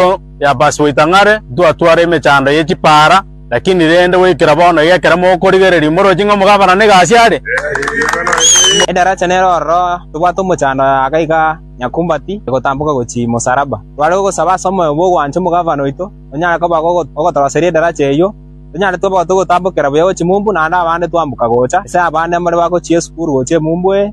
Amo yapasi goita ng'are, ntwatware emechando ye chipaara, lakini rende goikera bono iga ekero mokorigereria imoroche ng'a omogabana n'egasi are. Edaracha nero ororo tobwate omochando aka iga nyakumbati egotamboka gochia Mosalaba. Tware gogosaba ase omoyo bw'ogwancha omogabana oito onyare koba ogotoroseria edaracha eyio, tonyare tobe togotambokera buya gochia Mumbu naende abande twamboka gocha, ase abande more bagochia esukuru gochia Emumbu ee.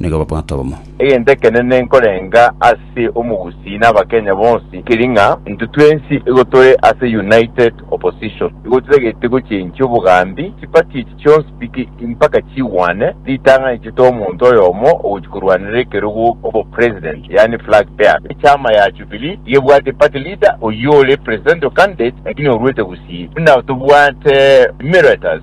nigo babwate obomo. Egento ekenene nkorenga ase omogusii na abakenya bonsi keri ng'a intwe twensi igo tore ase united opposition igo titagete gochenchia obogambi chiparty echi chionsi piki mpaka chigwane ritang'ani chete omonto oyomo ogochia korwanera ekerogo obo president yaani flag bearer echama ya jubilee igo ebwate party leader oyio ore presidential candidate lakini orwete gusii buna tobwate emurators